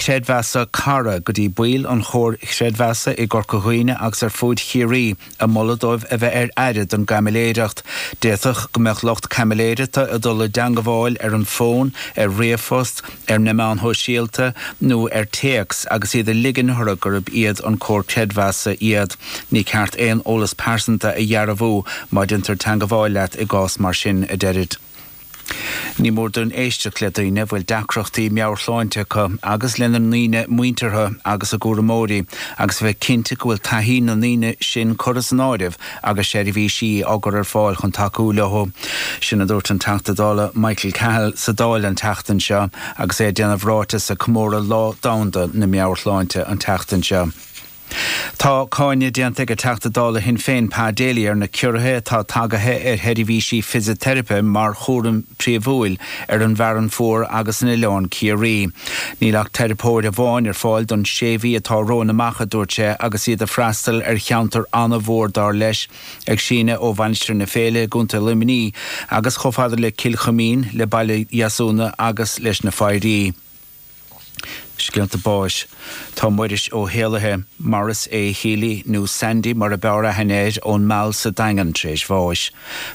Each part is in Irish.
Creidmheasa Cara go dtí baill an Chomhair Chreidmheasa i gCorca Dhuibhne agus ar fud Chiarraí, ag moladh dóibh a bheith ar aire don gcaimiléireacht. D'fhéadfadh go mbeadh lucht caimiléireachta ag dul i dteangabháil ar an bhfón, ar ríomhphost, ar na meáin shóisialta nó ar téacs agus iad ag ligean orthu gurb iad an Comhar Creidmheasa iad. Ní ceart aon eolas pearsanta a dhearbhú má déantar teangabháil leat i gcás mar sin, a deirid. Ní mór dúinn éisteacht le daoine a bhfuil deacrachtaí meabhairshláinte acu agus lena ndaoine muinteartha agus a gcúramóirí, agus a bheith cinnte go bhfuil taithí na ndaoine sin curtha san áireamh agus seirbhísí á gcur ar fáil chun tacú leothu. Sin a dúirt an Teachta Dála Michael Cahill sa Dáil an tseachtain seo agus é ag déanamh ráiteas ag comóradh Lá Domhanda na Meabhairshláinte an tseachtain seo. Tá cáineadh déanta ag an Teachta Dála Shinn Féin Pa Daly ar na ciorruithe atá tagaithe ar sheirbhísí fisiteiripe mar chúram príomhúil ar an bhFearann Fuar agus in Oileán Ciarraí. Níl ach teiripeoir amháin ar fáil don sé mhí atá romhainn amach a dúirt sé agus iad ag freastal ar cheantar an-mhór dar leis ag síneadh ó Mhainistir na Féile i gContae Luimní agus chomh fada le Cill Chuimín, le Baile Dheasúna agus leis na Foidhrí. Scéalta báis. Tá Muiris Ó hÉalaithe, Maurice A. Healy, nó Sandy mar ab fhearr aithne air, ón Meal sa Daingean tar éis bháis.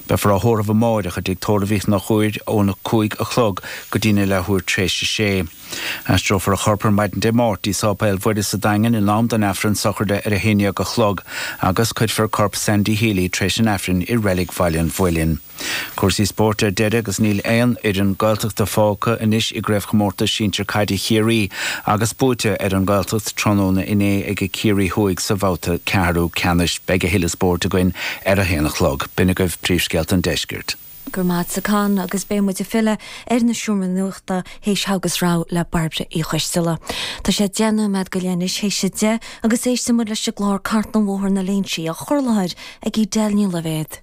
Beifear á thórramh amáireach i dTigh Tórraimh Uí Chonchúir ón 5 a chlog go dtína leathuair tar éis a sé. Aistreofar a chorp ar maidin Dé Máirt dtí Sáipéal Mhuire sa Daingean in am don Aifreann sochraide ar a haon dhéag a chlog agus cuirfear corp Sandy Healy tar éis an Aifrinn i Reilig Bhaile an Mhuilinn. Cúrsaí spóirt ar deireadh agus níl aon fhoireann Gaeltachta fágtha anois i gCraobhchomórtas Sinsear Caide Chiarraí agus buaite ar an nGaeltacht tráthnóna inné ag Ciarraí Thuaidh sa bhabhta ceathrú ceannais. Beidh a thuilleadh spóirt againn ar a haon a chlog. B'in agaibh príomhscéalta an deiscirt. Go raibh maith agatsa Con agus beidh muid ag filleadh ar na seomraí nuachta théis Thogha is Rogha le Bairbre Uí Choistealla. Tá sé deich nóiméad go leith anois théis a deich agus éistfidh muid leis an gclár Cartlann Bhóthar na Léinsí á chur i láthair ag Edel Ní Loibhéad.